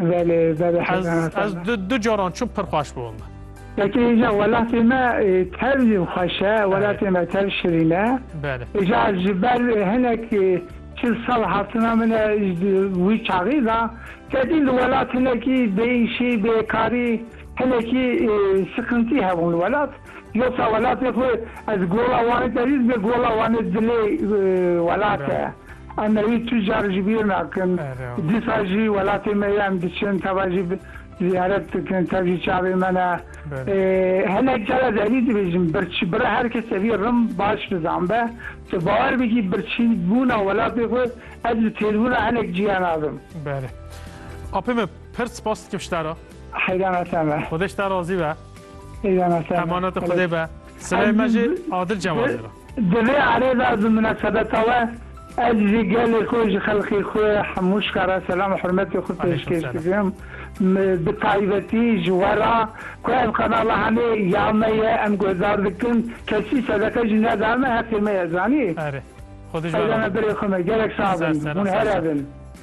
Belê belê Ez hezan ez hezan. du du caran çûm pir xweş bû min. Yekê îja welatê me ê, tev jî xweş e, welatê me tev şirîn e. Belê. Îja ji ber ê, hinek ê, çil sal hatina min e ji di wî çaxî da. Kedî li welat hinekî bêîşî, bêkarî, hinekî ê, siqintî hebûn li welat. Yosa welatê xwe ez gola Wanê te rîz be gola Wanê dilê welat e. Em ê wî tu car ji bîr nakin. Dîsa jî welatê me ye em diçin teva jî ziyaret dikin tev jî çavê me ne. Hinek car ez herî dibêjim birçî bira her kese vî rim baş bizan be tu bawer bikî birçî bûna welatê xwe ez bi têrbûna hinek ciya nadim. Belê. Apê me pir spas dikim ji te re. Heyran e te me. Xwedê ji te razî be. Emanetê Xwedê be. Sileyê me jî Adil Cewazê re. Di vê erê de bi minasebeta we ez jî gelê xwe ji xelkê xwe Hemûşka re selam û hurmetê xwe pêşkêş dikim. Bi taybetî ji we re ku ev kanala hemê ya me ye em guhdar dikin. Kesî sedeke jî neda me heqê me ye zanî. Erê. Xwedî ji we re be. Birê xwe me gelek sax bin. Hûn here bin.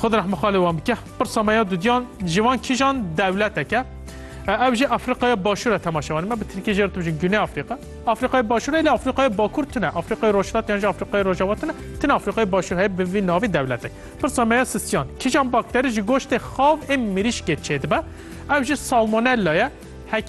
Xwe di rehma xalê wan bike. Pirsa me ya dudiyan ji van kîjan dewleteke? Ev jî Afrîqaya Başûr e temaşe wan. Me bi Tirkî jê re tu bijîn Güney Afrîqa. Afrîqaya Başûr e lê Afrîqaya Bakur tune. Afrîqaya Rojhilat yan jî Afrîqaya Rojava tune. Tune Afrîqaya Başûr heye bi vî navê dewletek. Pirsa me ya sistiyan. Kîjan bakterî ji goştê xav ên mirîşkê çêdibe? Ev jî salmonella ye.